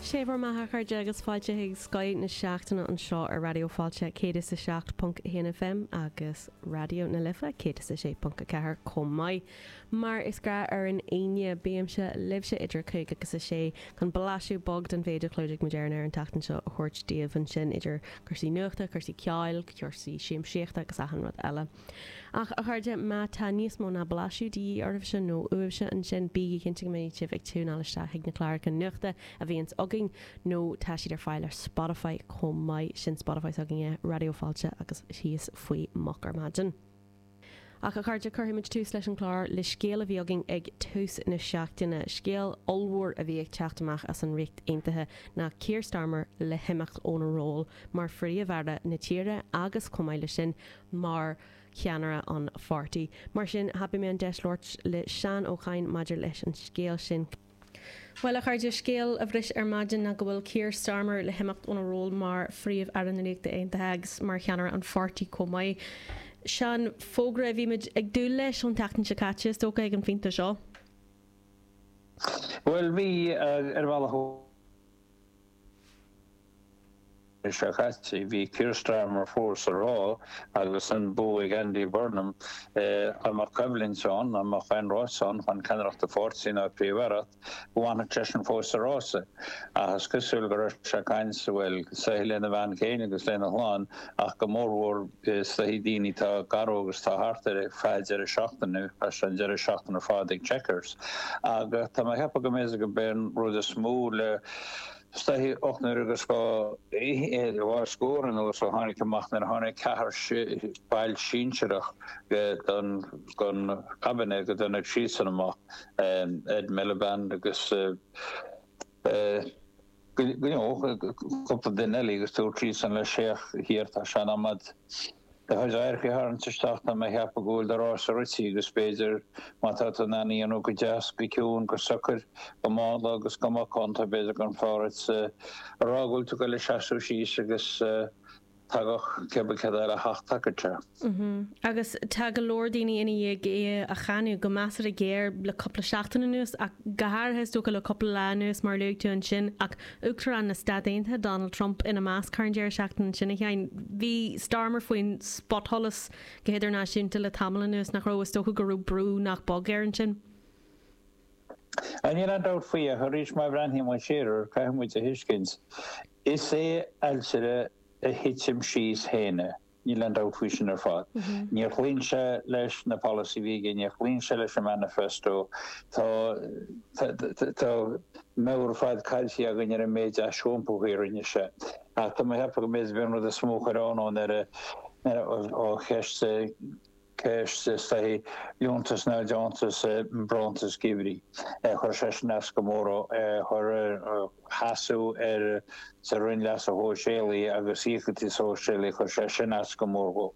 Sé bhur mbeatha, a chairde, agus fáilte chuig Scoth na Seachtaine anseo ar Raidió Fáilte 107.1 FM agus Raidió na Life 106.4 chomh maith. Mar is gnáth ar an Aoine, bímse libhse idir a cúig agus a sé chun blaiseadh beag den mhéid a chlúdaigh muid ar an aer an tseachtain seo a thabhairt daoibh ansin idir cúrsaí nuachta, cúrsaí ceoil, cúrsaí siamsíochta agus achan rud eile. Ach, a chairde, má tá níos mó ná blaiseadh de dhíth oraibhse, nó uaibhse, ansin, bígí cinnte go mbeidh sibh ag tiúineáil isteach chuig na cláracha nuachta a bhíonns againn, nó tá siad ar fáil ar Spotify chomh maith, sin Spotify s'againne, Raidió Fáilte agus thíos faoi Moch ar Maidin. Ach, a chairde, cuirfidh muid tús leis an chlár le scéal a bhí againn ag tús na seachtaine, scéal ollmhór a bhí ag teacht amach as an Ríocht Aontaithe, ná Keir Starmer le himeacht óna ról mar phríomh-aire na tíre agus, chomh maith leis sin, mar cheannaire an pháirtí. Mar sin, thapaigh mé an deis labhairt le Seán Ó Cadhain maidir leis an scéal sin. Bhuel, a chairde, scéal a bhris ar maidin ná go bhfuil Keir Starmer le himeacht óna ról mar Phríomh-Aire na Ríochta Aontaithe agus mar cheannaire an pháirtí chomh maith. Seán, fógra a bhí muid ag dúil leis ón tseachtain seo caite, is dócha, ag an phointe seo. Bhuel, bhí, ar bhealach. Mí seo caite, bhí Keir Starmer fós ag rá agus an bua ag Andy Burnham. Dá mbeadh coimhlint ann, dá mbeadh aon rás ann chun ceannaireacht an pháirtí ná an Phríomh-Aireacht, go bhfanfadh seisean fós sa rása. Ach is cosúil go raibh sé ag caint, bhuel, is dóichí lena bhean féin agus lena chlann, ach go mórmhór is dóichí daoine atá gar dó agus atá thart ar feadh deireadh seachtaine, chaith sé an deireadh seachtaine ar fad ag Chequers. Ach tá mé ag ceapadh go mb'fhéidir gurb é an rud is mó le, is dóichí, ocht n-uaire agus dhá scór anuas a tháinig amach nuair a tháinig ceathrar baill sinsearach den Cabinet go dtáinig siadsan amach, Ed Miliband agus. Nó cúpla duine eile agus dúirt siadsan leis, féach Keir, tá sé in am agat do chuid adharca a tharraingt isteach tá mé a cheapadh go bhfuil do rása rite agus b'fhéidir má tá tú in ann é a dhéanamh go deas, go ciúin, go socair, go mánla agus go macánta b'fhéidir gurbh fhearr duit a rá go bhfuil tú ag goil ag seasamh síos agus Tagadh cibé cé atá ag teacht tacairte. Agus tá go leor daoine ina dhiaidh é a cháineadh, go measartha géar, le cúpla seachtain anuas, ach go háirithe, is dócha, le cúpla lá anuas, mar a luaigh tú ansin, ach Uachtarán na Stát Aontaithe, Donald Trump, ina measc. Thar an deireadh seachtaine ansin, a Sheáin, bhí Starmer faoin spotsholas go hidirnáisiúnta le tamall anuas, nach raibh? Is dócha go raibh brú nach beag air ansin. Níl aon dabht faoi ach arís má bhreathnaíonn muid siar air, caithfidh muid a thuiscint, is é ailtire a thitim síos féin é. Níl aon dabht faoi sin ar fad. Níor chloígh sé leis na polasaithe a bhí aige, níor chloígh sé leis an manifesto. Tá tá meabhair ar fad caillte againn ar an méid ais iompaithe a rinne sé. Ach tá mé ag ceapadh go mb'fhéidir bhí an rud is mó a chuir ionadh ann ar a ó cheist ceist is dóigh, liúntas nó deontas bronntanas geimhridh. Chuir sé sin as go mór ar sheasamh ar sa Roinn Leasa Shóisialaigh agus Íocaíochtaí Sóisialaigh, chuir sé sin as go mór dhó.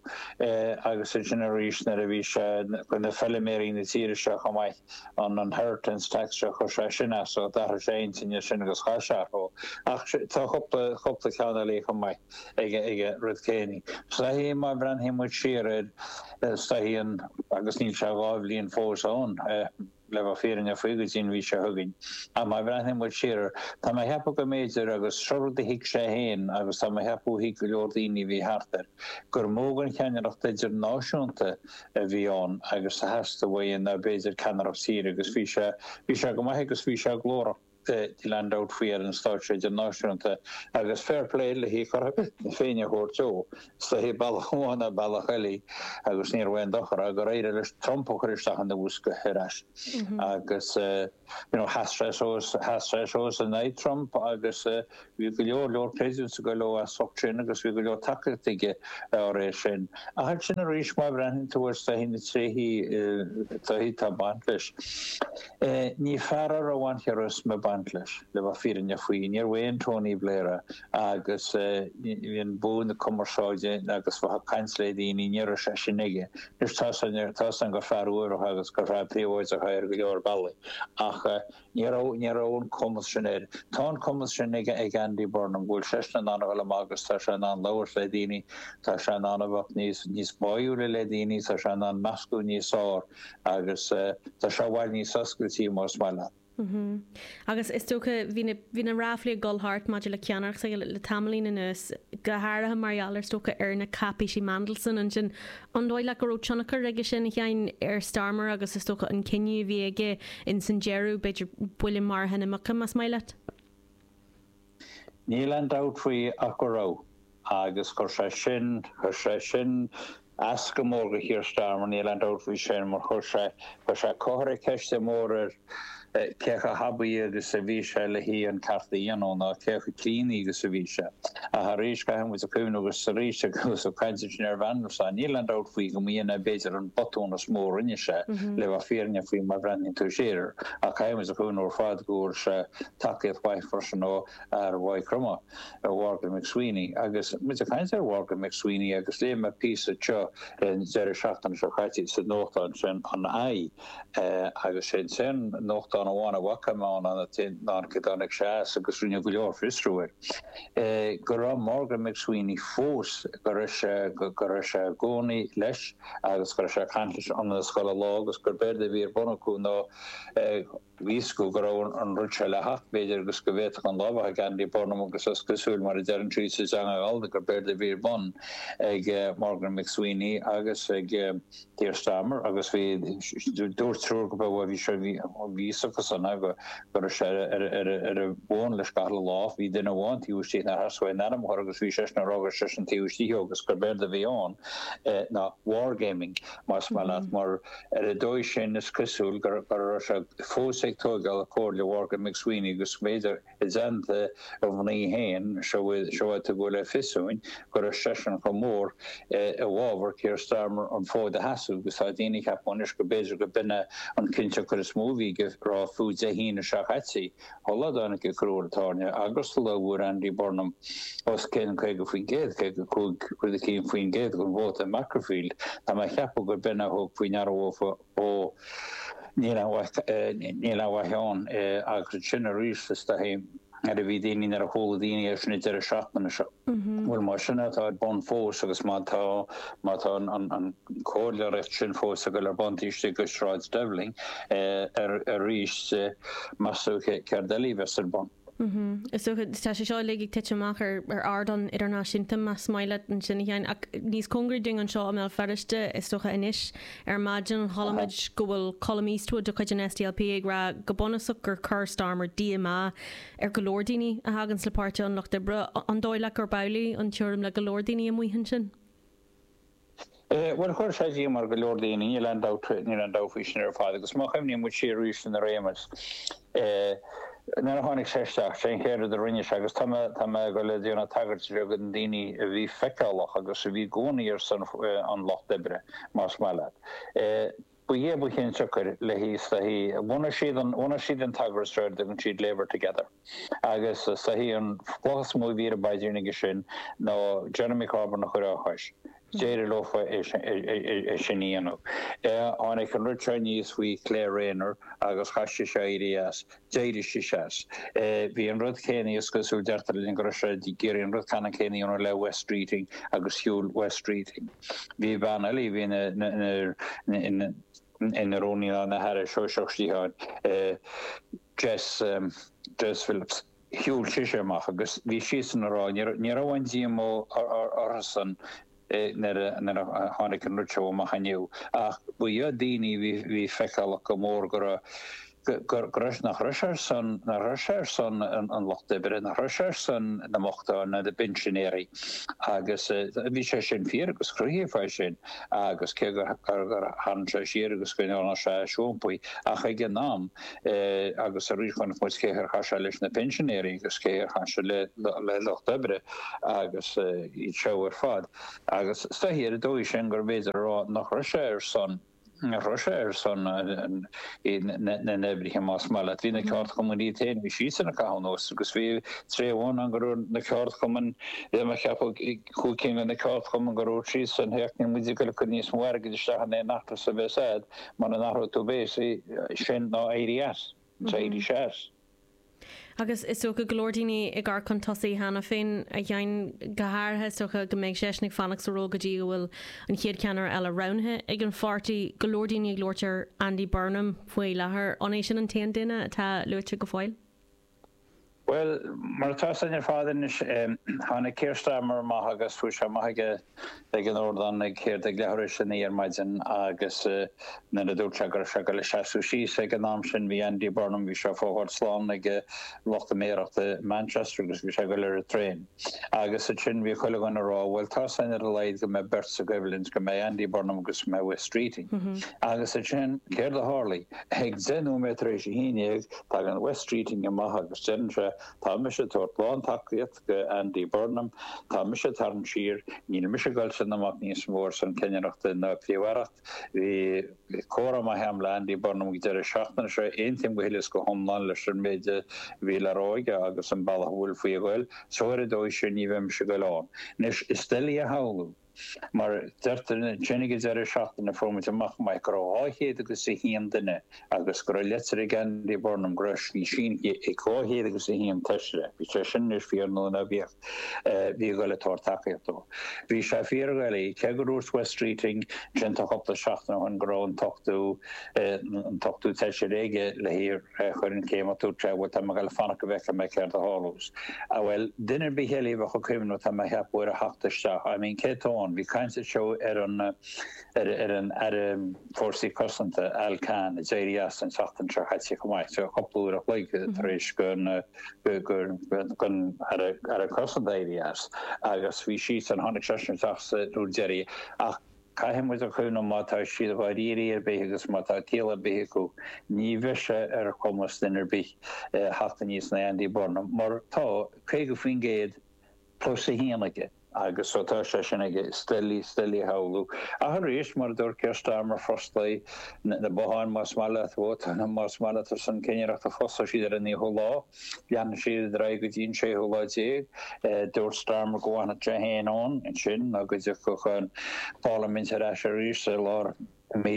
Agus ansin arís nuair a bhí sé ag cur na feiliméaraí na tíre seo chomh maith an inheritance tax seo, chuir sé sin as, d'athraigh sé a intinn ansin agus chas sé orthu. Ach tá cúpla, cúpla ceann eile chomh maith. aige roimh ré. Sé an chaoi, má bhreathnaíonn muid siar air, sé an chaoi, agus níl sé dhá bhliain fós ann, le bheith fírinneach faoi go dtí an mhí seo chugainn, ach má bhreathnaíonn muid siar air, tá mé ag ceapadh go mb'fhéidir, agus seo rud a thuig sé féin agus tá mé ag ceapadh a thuig go leor daoine a bhí thart air, gur mó de cheannaireacht idirnáisiúnta a bhí ann agus a theastaigh uaidh ná b'fhéidir ceannaireacht tíre agus bhí sé, bhí sé go maith agus bhí sé glórach. níl aon dabht faoi ar an stáitse idirnáisiúnta agus fair play lena cheart féin a thabhairt dó. Is dóigh bealach amháin nó bealach eile agus níorbh aon dochar é gur éirigh leis Trump a chur isteach ina bhosca ar ais agus sheas sé suas in aghaidh Trump agus Bhí go leor leor pléisiúr ag go leor as ucht sin agus bhí go leor tacaíocht aige dá réir sin. Ach ansin arís má bhreathnaíonn tú ar siar ar na tréithe atá ag baint leis. Ní fear é a raibh an charisma ag baint leis, le bheith fírinneach faoi. Níorbh aon Tony Blair é agus bhí an bua na cumarsáide agus bheith ag caint le daoine, ní raibh sé sin aige. Anois tá seans aige, tá seans gur fear uaibhreach agus gur fear príobháideach é ar go leor bealaí ach, Ní raibh, ní raibh an cumas sin aige. Tá an cumas sin ag, ag Andy Burnham, go bhfuil seisean in ann a dhul amach agus tá sé in ann labhairt le daoine, tá sé in ann a bheith níos, níos báúla le daoine, tá sé in ann meascadh níos fearr agus eh, tá sé i bhfad níos oscailte más maith leat. Mm-hm. Agus is dócha, bhí na, bhí na ráflaí ag dul thart maidir le ceannaireacht s'aige le, le tamaillín anuas, go háirithe mar gheall ar, is dócha, ar na cáipéisí Mandelson ansin An dóigh leat go raibh tionchar aige sin, a Sheáin, ar Starmer agus is dócha an cinneadh a bhí aige ins an deireadh, b'fhéidir, buille maraithe na muice, más maith leat? Níl aon dabht faoi ach go raibh. Agus chuir sé sin, chuir sé sin as go mór do Keir Starmer, níl aon dabht faoi sin, mar chuir sé, chuir sé, chuir sé ceist mhór ar, cé chomh haibí agus a bhí sé leis an gceart a dhéanamh, ná cé chomh críonna agus a bhí sé. Ach arís, caithfidh muid a chuimhneamh agus arís eile, agus ag caint ansin ar Mhandelson, níl aon dabht faoi go mb'shin é b'fhéidir an botún is mó a rinne sé, le bheith fírinneach faoi mar a bhreathnaíonn tú siar air. Ach caithfidh muid a chuimhneamh ar fad go bhfuair sé tacaíocht mhaith freisin ó fhear Mhaigh Chromtha, Mhorgan McSweeney. Agus muid ag caint ar Mhorgan McSweeney, agus léigh mé píosa teo an deireadh seachtaine seo caite sa nuachtán sin, an i, Agus é ansin, nuachtán amháin a bhfaca mé ann, an t-aon dán go dtáinig sé as, agus rinneadh go leor fiosrú air, go raibh Morgan McSweeney fós, go raibh sé, go raibh sé i gcónaí leis agus go raibh sé ag caint leis ionann is chuile lá agus gurb éard a bhí ar bun acu ná Bhí a fhios go go raibh an rud seo le theacht, b'fhéidir, agus go bhféadfadh an lá a bheith ag Andy Burnham agus is cosúil, mar a deireann siad sa teanga ghallda, gur b'éard a bhí ar bun ag Morgan McSweeney agus ag Keir Starmer agus bhí beirt triúr go raibh bhí sé bhí a fhios acusan a go go raibh sé ar ar an bhfón leis gach le lá. Bhí duine amháin taobh istigh na has bhain ainm thoir agus bhí seisean ag rá gur seisean taobh istigh agus gur b'éard a bhí ann ná wargaming más maith leat mar Ar an dóigh sin, is cosúil go raibh sé fós ag tóigeáil a chomhairle Mhorgan McSweeney agus b'fhéidir i dteannta a mhnaoi féin, Siobhán, tugadh le fios dúinn go raibh seisean chomh mór i bhfabhar Keir Starmer an fód a sheasamh agus tá daoine ag ceapadh anois go b'fhéidir go mb'in é an tionchar is mó a bhí air a rá fiú Dé hAoine seo caite. an lá a dtáinig Keir Starmer agus an lá a bhfuair Andy Burnham os cionn 50%, 55 rud eicínt faoin gcéad, den vóta i Makerfield, tá mé ag ceapadh gurb in a thug faoi ndeara dóibh ó níl aon mhaith ann agus ansin arís is dóichí nuair a bhí daoine, nuair a chuala daoine é sin ag deireadh seachtaine seo. Bhuel, más sin atá ar bun fós agus má tá, má tá an comhairleoireacht sin fós ag dul ar bun istigh i Sráid Downing arís, meas tú, céard eile a bheas ar bun? Is dócha, tá sé seo uilig ag titim amach ar ardán idirnáisiúnta, más maith leat ansin a Sheáin, ach níos cóngaraí dúinn anseo i mBéal Feirste is dócha anois. Ar maidin chuala muid go bhfuil Colum Eastwood de chuid an SDLP ag rá go bunúsach gur chuir Starmer díomá, ar go leor daoine a thaganns le Páirtí an Lucht Oibre, an dóigh leat gurb amhlaidh an tuairim le go leor daoine amuigh ansin? Bhuel, chuir sé díomá ar go leor daoine, níl aon dabht, níl aon dabht faoi sin ar fad agus má chuimhníonn muid siar arís ar an réimeas, nuair a tháinig sé isteach, cén chéad rud a rinne sé agus tá mé, tá mé ag dul a dhéanamh tagairt bheag do na daoine a bhí feiceálach agus a bhí i gcónaí ar son an Lucht Oibre, más maith leat. Ba é ba chionsiocair leis, is dóichí, bhunaigh siad an, bhunaigh siad an t-eagras seo ar a dtugann siad Labour Together agus is dóichí an chloch is mó a bhí ar an bpaidrín acu sin ná Jeremy Corbyn a chur fá chois. D'éirigh leo é sin a dhéanamh. Tháinig an rud seo aníos faoi Claire Rayner agus chaith sise éirí as. D'éirigh sise as. Bhí an rud céanna, is cosúil, deirtear linn go raibh sé ag iarraidh an rud ceannann céanna a dhéanamh le Wes Streeting agus shiúil Wes Streeting. Bhí bean eile a bhí ina, ina, ina rúnaí ná ina haire sóisearach sciatháin, Jess, Jess Phillips, shiúil sise amach agus bhí siadsan ag rá, ní raibh, ní raibh aon díomá orthusan, nuair a tháinig an rud seo amach inniu, ach ba iad daoine a bhí feiceálach go mór go raibh, go raibh, nach raibh sé ar son, nach raibh sé ar son an lucht oibre, nach raibh sé ar son na mbochtán nó na bpinsinéirí agus bhí sé sin fíor agus cruthaíodh é sin agus cé gur tharraing sé siar agus go ndearna sé aisiompú ach ag an am, agus aríst chonaic muid cén chaoi ar chaith sé leis na pinsinéirí agus cén chaoi ar chaith sé le lucht oibre agus iad seo ar fad. Agus is dóichí ar an dóigh sin gurbh fhéidir a rá nach raibh sé ar son, nach raibh sé ar son na n-oibrithe más maith leat. Bhí na ceardchumainn iad féin, bhí siadsan ag caitheamh anuas agus bhí tráth amháin ann go raibh na ceardchumainn, bhí mé ag ceapadh chúig cinn de na ceardchumainn go raibh siadsan, féach, níl muid ag goil a cur níos mó airgid isteach in aon fheachtas a bheas a'd. Mara n-athróidh tú béasaí, sin ná éirí as, ná éirí as. Agus is dócha go leor daoine ag amharc chun tosaigh cheana féin, a Sheáin, go háirithe is dócha go mbeidh seisean ag fanacht sa ról go dtí go bhfuil an chéad cheannaire eile roghnaithe ag an pháirtí. Go leor daoine ag labhairt ar Andy Burnham faoi láthair, an é sin an t-aon duine atá luaite go fóill? Bhuel, mar atá a fhios a'inn ar fad anois, tháinig Keir Starmer amach agus chuaigh sé amach ag, ag an ardán ag céard ag leathuair tar éis a naoi ar maidin agus nuair a dúirt sé go raibh sé ag goil ag seasamh síos ag an am sin bhí Andy Burnham, bhí sé ag fágáil slán ag lucht na méarachta i Manchester agus bhí sé ag goil ar an traein. Agus ansin, bhí chuile dhuine ag rá, bhuel, tá a fhios a'inn ar a laghad go mbeidh beirt sa gcoimhlint, go mbeidh Andy Burnham agus go mbeidh Wes Streeting. Agus ansin, céard a tharlaigh? Ag deich nóiméad tar éis a haon dhéag, tagann Wes Streeting amach agus deireann sé, tá mise ag tabhairt lántacaíocht do Andy Burnham, tá mise ag tarraingt siar, níl mise ag goil san iomaíocht níos mó ar son cinnireachta na príomh-aireachta. Bhí comhrá maith agam le Andy Burnham ag deireadh seachtaine seo. Aontaím go huile is go hiomlán leis an méid a bhí le rá aige agus an bealach a bhfuil faoi a ghoil. So ar an dóigh sin ní bheidh mise ag goil ann. Anois, is doiligh a shamhlú, mar deirtear linn ag an deireadh seachtaine a fuair muid amach go maith go raibh 201 duine agus go raibh leitir ag Andy Burnham go raibh sí sínithe ag dhá chéad agus a haon Feisire. Bíodh sé sin anois fíor nó ná bíodh, a bhí ag goil ag tabhairt tacaíocht dó. Bhí sé fíor dhoiligh, cé go ndúirt Wes Streeting ansin tá cupla seachtain ó shin go raibh an t-ochtó, an t-ochtó Feisire aige le hé a chur chun cinn ach dúirt sé, bhuel tá mé ag dul ag fanacht go bhfeicfidh mé céard a tharlós. Ah bhuel, duine ar bith eile a bheadh ag cuimhneamh tá mé a cheapadh ar a theacht isteach. I mean cé atá ann? Bhí caint anseo ar an, ar an Aire Fórsaí Cosanta, Al Carns, a d'éirigh as an tseachtain seo caite chomh maith, cúpla uair a chloig tar éis don Aire Cosanta éirí as, agus bhí seisean, tháinig seisean isteach sa uair deiridh. Ach caithfidh muid a chuimhneamh má tá siad dáiríre ar bith agus má tá ciall ar bith acu, ní bheidh sé ar chumas duine ar bith theacht aníos ná Andy Burnham, mar tá 50% plus a haon aige. Agus ó tá sé sin aige, is doiligh, is doiligh a shamhlú, ach arís, mar a dúirt Keir Starmer, fosclóidh na botháin más maith leat, vótáil más maith leat ar son cinnireachta, fosclóidh siad ar an naoú lá, leanfaidh siad ar aghaidh go dtí an séú lá déag. Dúirt Starmer go bhfanfadh sé fhéin ann ansin, nó go dtiocfadh an pharlaimint ar ais arís i lár i mí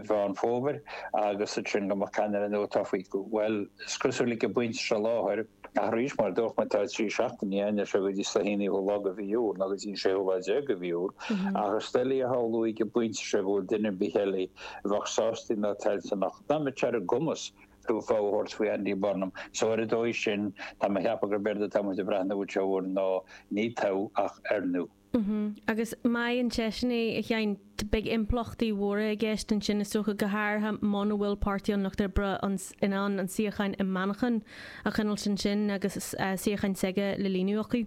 Mheán Fómhair agus ansin go mbeadh ceannaire nua tofa. Bhuel, is cosúil ag an bpointe seo i láthair, ach arís, mar a dúirt mé, tá trí seachtaine ann, as seo go dtí an naoú lá de mhí Iúil, nó go dtí an séú lá déag de mhí Iúil, ach is doiligh a shamhlú ag an bpointe seo go bhfuil duine ar bith eile a bheadh sásta ná toilteanach ná a mbeadh sé ar a gcumas fogha a thabhairt faoi Andy Burnham, so ar an dóigh sin, tá mé a cheapadh gurb éard atá muid ag breathnú air ná, ní toghadh ach oirniú. Agus má bhaineann seisean é, a Sheáin, beidh impleachtaí mhóra i gceist ansin, is dócha, go háirithe muna bhfuil Páirtí an Lucht Oibre in ann an suíochán i Manchain a choinneáilt ansin agus suíochán s'aige le líonadh acu.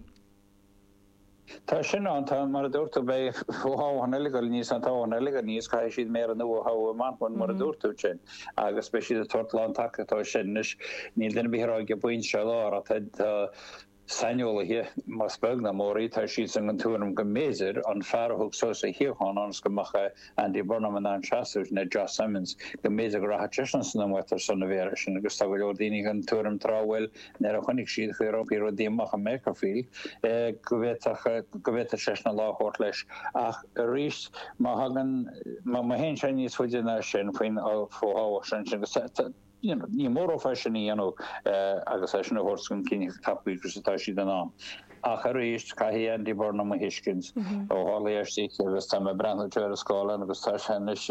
Tá sin ann, tá. Mar a dúirt tú, beidh fo-thoghchán eile, beidh anois an toghchán eile againn agus caithfidh siad méara nua a thoghadh i Manchain, mar a dúirt tú ansin, agus beidh siad ag tabhairt lántacaíochta dó sin. Anois, níl duine ar bith ag rá ag an bpointe seo i láthair, tá, tá, Saineolaithe, más beag ná mór í, tá siadsan den tuairim go mb'fhéidir, an fear a thug suas a shuíochán ionas go mbeadh Andy Burnham in ann seasamh ná Josh Simons, go mb'fhéidir go rachadh seisean san iomaíocht ar son an Mhéara sin agus tá go leor daoine den tuairim tráth, bhuel, nuair a choinnigh siad Reform UK amach i Makerfield, go bhféadfadh, go bhféadfadh seisean an lá a thabhairt leis ach arís, má thagann, má théann sé níos faide ná sin faoin, faoin fho-thoghchán sin, ansin, agus tá, tá. Ní mór é sin a dhéanamh agus é sin a thabhairt chun cinn chomh tapa agus atá siad in ann. Ach arís, caithfidh Andy Burnham a thuiscint, ó tharla é istigh agus tá mé ag breathnú ar an scáileán agus tá sé anois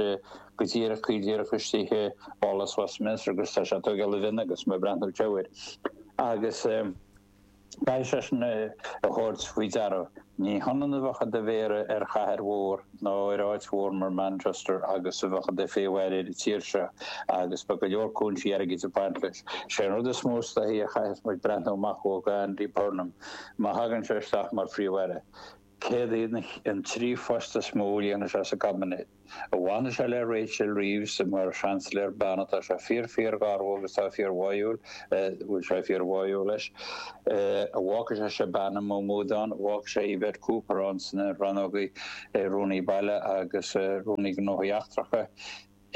go díreach, go díreach istigh i bPálás Westminster agus tá sé ag tógáil a mhionn agus mé ag breathnú air anseo agus, Caithfidh seisean é a thabhairt faoi deara. Ní hionann a bheadh i do mhéara ar chathair mhór ná ar áit mhór mar Manchester agus a bheith i do phríomh-aire ar an tír seo, agus beidh go leor cúinsí airgid ag baint leis. Sé an rud is mó is dóichí a chaithfeas muid breathnú amach ó Andy Burnham má thagann sé isteach mar phríomh-aire. Céard iad an trí phost is mó a líonfaidh sé sa gcaibinéad? An bhfanfaidh sé le Rachel Reeves mar Sheansailéir bean atá sé fíor fíorgharbh agus tá fíor bháúil bhfuil sé fíor bháúil leis. An bhfágfaidh sé Shabana Mahmood ann? An bhfágfaidh sé Yvette Cooper ann sna rannógaí Rúnaí Baile agus Rúnaí Gnóthaí Eachtracha?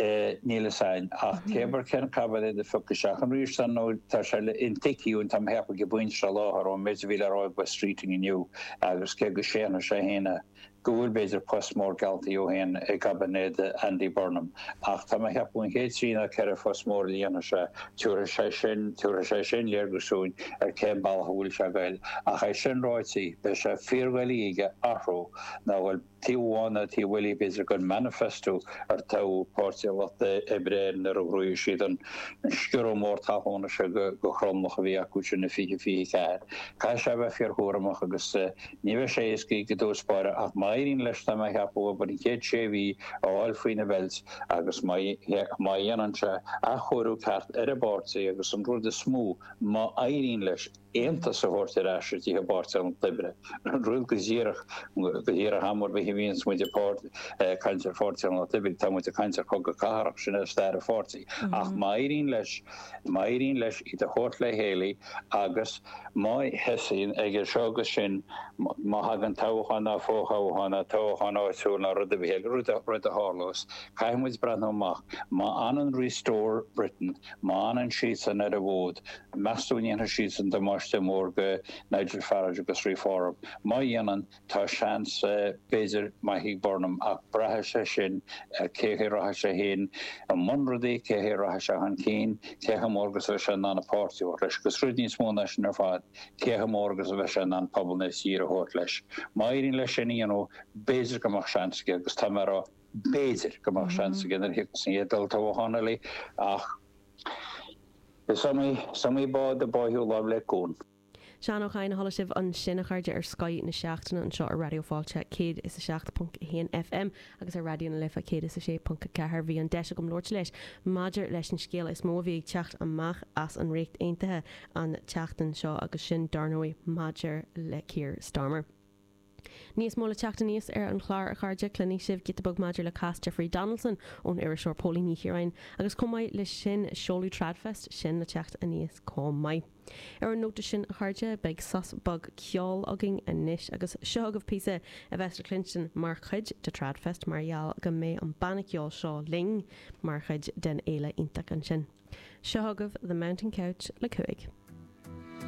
é níl fhios a'inn ach cé bar cén caibinéad a phioc isteach an rír san nó tá sé le intuighciú tá mé a cheapadh ag an bpointe seo láthair ón méid a bhí le rá ag Wes Streeting inniu agus cé go séanfaidh sé fhéin go bhfuil b'fhéidir post mór geallta dhó fhéin i gcaibinéad Andy Burnham ach tá mé a cheapadh an chéad trí ná ceithre phost mór a líonfas sé tiúrfaidh sé sin tiúrfaidh sé sin léargus dúinn ar cén bealach a bhfuil sé ag goil ach é sin ráití beidh sé fíordhoiligh aige athrú ná a ghoil Taobh amháin ná taobh eile b'fhéidir den manifesto ar toghadh Páirtí an Lucht Oibre air nuair a ghnóthaigh siad an sciorradh mór talúna seo go thromlach a bhí acu sin i 2024. Caithfidh sé a bheith fíorchúramach agus ní bheidh sé éasca i dtús báire ach má éiríonn leis tá mé a cheapadh obair na chéad sé mhí a fháil faoina bheilt agus má dhéanann sé athchóiriú ceart ar an bpáirtí agus an rud is mó, má éiríonn leis. aontas a thabhairt ar ais isteach i bPáirtí an Lucht Oibre. Rud go díreach, go díreach am ar bith a bhíonns muid ag caint ar Pháirtí an Lucht Oibre, tá muid ag caint ar chogadh cathartha, sin é stair an pháirtí. Ach má éiríonn leis, má éiríonn leis iad a thabhairt le chéile agus má thosaíonn ag seo agus sin, má thagann toghchán ná fo-thoghchán ná toghchán áitiúil ná rud ar bith eile, rud a tharlós, caithfidh muid breathnú amach, má fhanann Restore Britain, Má fhanann siadsan ar an bhfód, meastú an ndéanfaidh siadsan damáiste mór go Nigel Farage agus Reform? Má dhéanann, tá seans, b'fhéidir, maith ag Burnham, ach braithfidh sé sin ar cén chaoi a rachaidh sé féin i mbun rudaí, cén chaoi a rachaidh sé chun cinn, cé chomh mór agus a bheidh sé in ann an páirtí a thabhairt leis, agus rud níos mó ná sin ar fad, cé chomh mór agus a bheidh sé in ann pobal na tíre a thabhairt leis. Má éiríonn leis sin a dhéanamh, b'fhéidir go mbeadh seans aige, agus tá mé ag rá, B'fhéidir go mbeadh seans aige nuair a thiocfas an chéad olltoghchán eile ach is iomaí bád a báitheadh láimh le cuan. Seán Ó Cadhain, a chuala sibh ansin a chairde ar Scoth na Seachtaine anseo ar Raidió Fáilte 107.1 FM agus ar Raidió na Life 106.4, bhí an deis agam labhairt leis maidir leis an scéal is mó a bhí ag teacht amach as an Ríocht Aontaithe an tseachtain seo agus sin, dar ndóigh, maidir le Keir Starmer. Níos mó le teacht aníos ar an chlár a chairde, cluinfidh sibh giota beag maidir le cás Jeffrey Donaldson ón iriseoir Póilín Ní Chiaráin agus chomh maith leis sin seoladh Tradfest, sin le teacht aníos chomh maith. Ar an nóta sin a chairde, beidh sos beag ceoil againn anois agus seo agaibh píosa a bheas le cluinstin mar chuid de Tradfest mar gheall go mbeidh an banna ceoil seo linn mar chuid den fhéile iontach ansin. Seo agaibh The Mountain Couch le Cúig.